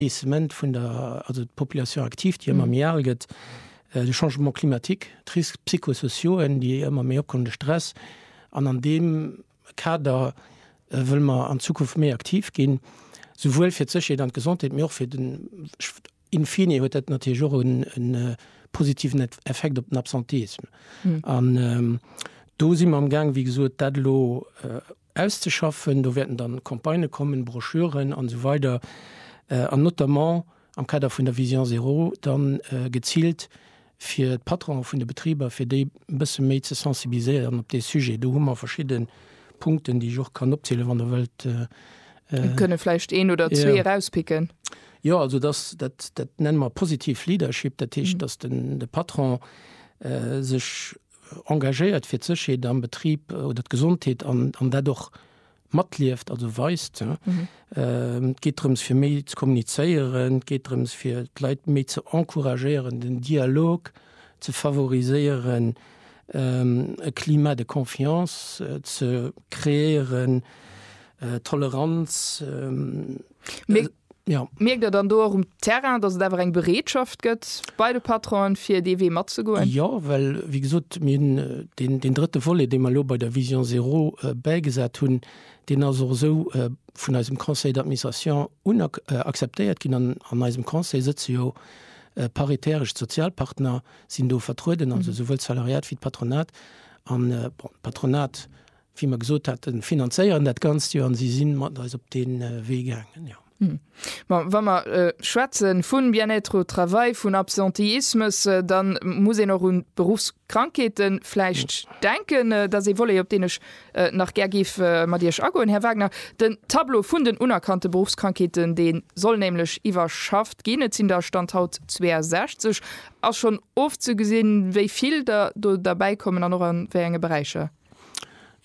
Baissement vun der, also d'Population active, déi ëmmer méi al gëtt, de Changement climatique, d'Risques psychosociaux, déi ëmmer méi opkommen, de Stress. An an deem Kader wëlle mer an Zukunft méi aktiv ginn, souwuel fir d'Sécherheet an d'Gesondheet, mee och fir den, in fine huet dat natierlech och e positiven Effekt op den Absentéisme. An do si mer amgaang, wéi gesot, dat elo Auszeschaffen. Do wäerten dann Campagnë kommen, Broschüren an esou weider an notamment am Kader vun der Vision zéro dann geziilt fir d'Patronen vun de Betriber, fir déi e bësse méi ze sensibiliséieren op dee Sujet. Do hu mer verschidde Punkten, déi ech och kann opzielen, wann Der wëllt. Mir kënne vläicht een oder zwee erauspicken. Jo, also dass, dat, dat nenne mer positiv Leadership, dat heescht, dass de Patron sech engagéiert fir d'Sécherheet am Betrib oder d'Gesondheet an dat och matlieft, also weist. Et geet drëms fir méi ze kommunizéieren, et geet drëms fir d'Leit méi ze encouragéieren, den Dialog ze favoriséieren, e Climat de confiance ze kreéieren, Toleranz. Jo. Mierkt Der dann do och um Terrain, datt et awer eng Bereetschaft gëtt bei de Patronen, fir dee Wee matzegoen? Jo, well, wéi gesot, mir hunn deen, deen drëtte Volet, dee mer elo bei der Vision zéro bäigesat hunn, deen ass och esou vun eisem Conseil d'administration un akzeptéiert ginn. An an eisem Conseil sëtze jo paritäresch, d'Sozialpartner sinn do vertrueden, also esouwuel d'Salariat wéi d'Patronat. An, bon, d'Patronat wéi mer gesot haten, finanzéieren dat Ganzt jo an si si mat eis op dee Wee gaangen, jo. Bon, wa mer schwätze vu Bien-être au travail, vun Absenteismus, da muss een och un d'Beruffskrankheete vläicht denken. Dat ass ee Volet, op deen ech nach gär géif mat Iech agoen, Här Wagner. Den Tableau vun den unerkannte Beruffskrankheeten, dee soll nämlech iwwerschafft ginn. Et sinn der, Stand haut, 62. Ass schonn ofzegesinn, wéi vill der do derbäikommen an och a wéi enge Beräicher?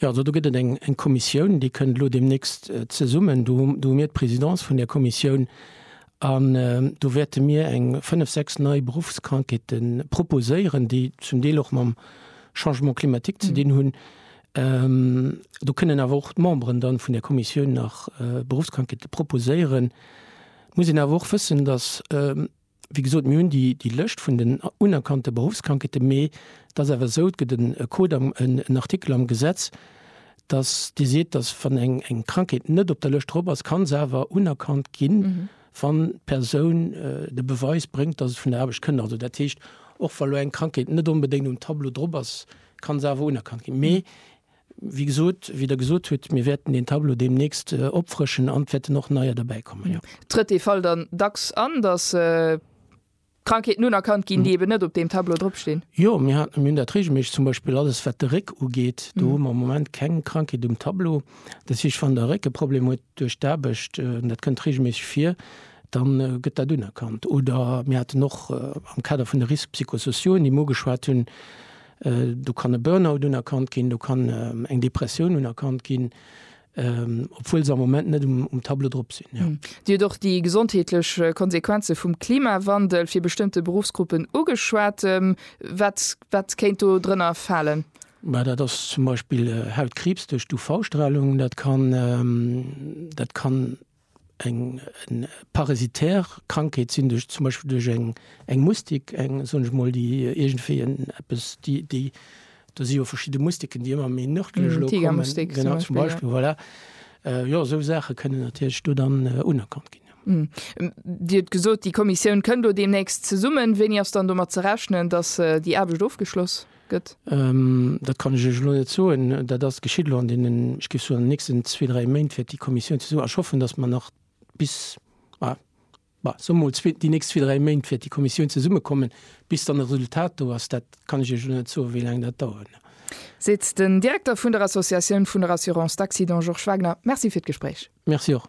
Jo, also do gëtt et eng Kommissioun, déi kënnt elo deemnächst zesummen. Do hu mir d'Présidence vun där Kommissioun an do wäerte mir eng fënnef, sechs nei Beruffskrankheete proposéieren, déi zum Deel och mam Changement climatique ze dinn hunn. Do kënnen awer och d'Memberen da vun där Kommissioun nach Beruffskrankheete proposéieren. Et muss een awer och wëssen, datt, Wéi gesot, mir hunn déi Lëscht vun den unerkannte Beruffskrankheeten, mee et ass awer esou, et gëtt e Code am, en Artikel am Gesetz, dass dee seet, dass wann eng Krankheet net op der Lëscht drop ass, ka se awer unerkannt ginn, wann d'Persoun de Beweis bréngt, dass et vun der Aarbecht kënnt. Also dat heescht, och wa lo eng Krankheet net onbedéngt um Tableau drop ass, ka se awer unerkannt ginn. Wéi gesot, wéi Der gesot hutt, mir wäerten deen Tableau deemnächst opfrëschen an et wäerten och neier derbäikommen, jo. Trëtt dee Fall dann dacks an, dass Krankheeten unerkannt ginn, déi eben net op deem Tableau dropstinn? Jo, mir hunn dat reegelméisseg. Zum Beispill alles, wat de Réck ugeet, do hu mer am Moment keng Krankheet um Tableau. Dat heescht, wann Der e Réckeproblem hutt duerch d'Aarbecht, an dat kënnt reegelméisseg vir, da gëtt dat unerkannt. Oder mir haten och am Kader vun de Risques psychosociaux, déi mir ugeschwat hunn, Do kann e Burnout unerkannt ginn, do kann eng Depressioun unerkannt ginn, obwuel se am Moment net um Tableau drop sinn. Dir hutt och déi gesondheetlech Konsequenze vum Klimawandel fir bestëmmte Beruffsgruppen ugeschwat. Wat, wat kéint do drënner falen? Mä dat ass zum Beispill Hautkriibs duerch d'UV-Stralung. Dat kann, dat kann Eng parasitär Krankheet sinn duerch zum Beispill duerch eng eng Mustik, eng soen ech mol, déi iergendwéi en eppes déi déi do si jo verschidde Mustiken, déi ëmmer méi nërdlech elo kommen. Tigermustik zum Beispill, jo. Genau, zum Beispill, voilà. Jo, esou Saache kënnen natierlech do dann unerkannt ginn, jo. Dir hutt gesot, déi Kommissioun kënn do deemnächst zesummen. Wéini ass dann domat ze rechnen, datt déi Aarbecht ofgeschloss. gëtt? Dat kann ech Iech elo net soen. Dat ass geschitt elo an deenen, ech géif soen, an den nächsten zwee, dräi Méint wäert déi Kommissioun ze soen. A ech hoffen, datt mer nach bis, ma bon, soe mer mol zwee, déi nächst zwee, dräi Méint wäert déi Kommissioun zesummekommen, bis dann e Resultat do ass. Dat kann ech Iech elo net soen, wéi laang dat dauert. Seet den Direkter vun der Associatioun vun der Assurance d'accident Georges Wagner. Merci fir d'Gespréich. Merci och.